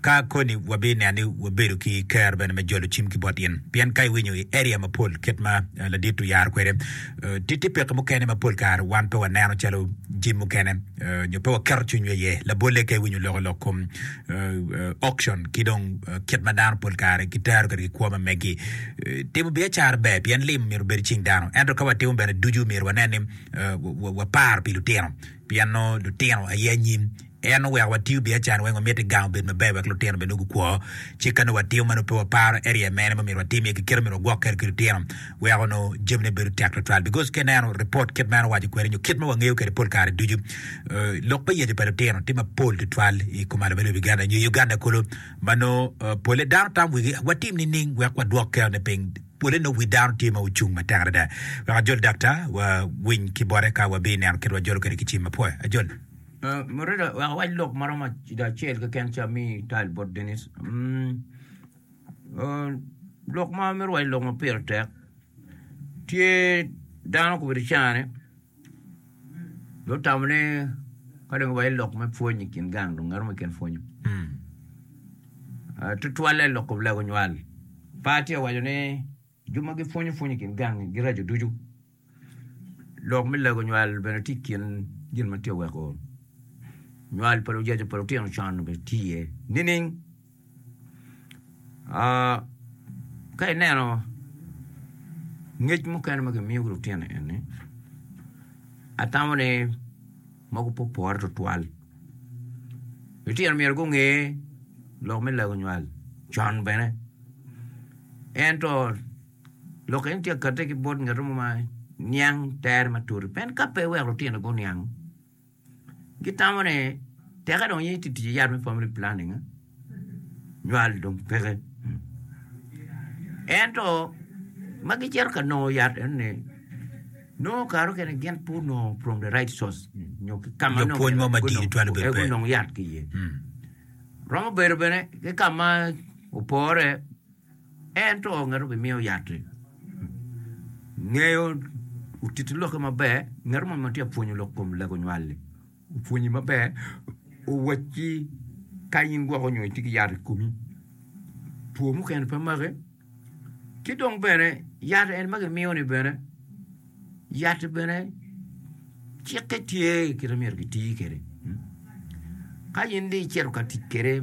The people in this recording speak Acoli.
Ka koni wabineno ni wabedo ki kero bene me jolo cim ki bot in, pien ka iwinyo i area mapol kit ma ladit oyaro kwede, ti ti peke mukene ma pol kare wan pe waneno calo jim mukene nyo pe waketo cwinywa iye. Labolle ka iwinyo loko lok kom auction ki dong kit ma dano pol kare gitero kwede ki kwo ma megi, timo biacara ber pien limo myero obed cing dano. Ento ka watimo bene ducu myero wanen ni waparo pi lutino pien nongo lutino aye anyim. En oweko watiyo biacara weng wamit i gang obed maber wek lutino bene gukwo. Ci ka nongo watiyo ma nongo pe waparo area mene ma omyero watim iye ki kite ma omyero wagwok kwede ki lutino weko nongo jamine bedo tek twatwal because ka ineno report kit ma en owaco kwede nyo kit ma wangeyo kwede pol kare ducu lok me yecu pa lutino tye mapol twatwal i kom alubbe lobo Uganda nyo i Uganda kulu ma nongo pole dano tam wigi watim nining wek wadwok kerone piny pole nongo wi dano tye ma ocung matek adada. Wek ajol dakta wawiny ki bote ka wabineno kit wajolo kwede ki cim mapwe. Ajol. Murilo, wek awac lok ma romo acel keken ca mi tal bot Denis. Mm, oh, lok ma amito waco lok ma pire tek tye dano kubedo cane dong otamo ni ka dong iwaco lok me pwony i kin gang dong romo i kin pwonyo. Ah, tutwalle lok kublego nywal. Pa tye waco ni Jo ma gipwonyo pwony i kin gangi giraco ducu. Lok me lego nywal bene tye i kin gin ma tye ka weko nywal pa lujaca pa lutino con obed tye iye nining? Ka ineno ngec mukene ma kimiyo ki lutino eni, atamo ni ma gupopore tutwal. Litino myero gunge lok me lego nywal con bene. Ento lok eni tye ka katte ki bot ngat mo ma niang tere matut. Pien ka pe iweko litino guniang, gitamo ni teke dong in iti tic ki yat me family planning. nywal dong peke. Ento ma gicito ka nongo yat eni nongo kare mukene gin pe onongo from the right source nyo ki ka ma Nyo pwony mo madit gunongo- twero bedo eh, pe. gunongo yat ki iye. Mm. Romo bedo bene ki ka ma opore ento ngat obimiyo yat-ti. Ngeyo otiti lokke maber ngat mo ma tye ka pwonyo lok kom lego nywal-li Opwonyi maber, owacci ka in gwoko nyo itye ki yat i komi, two mukene pe make. Ci dong bene yat en ma gimiyo ni bene, yat-ti bene cikke tye kit ma myero giti kwede. Ka in dong icito ka tic kwede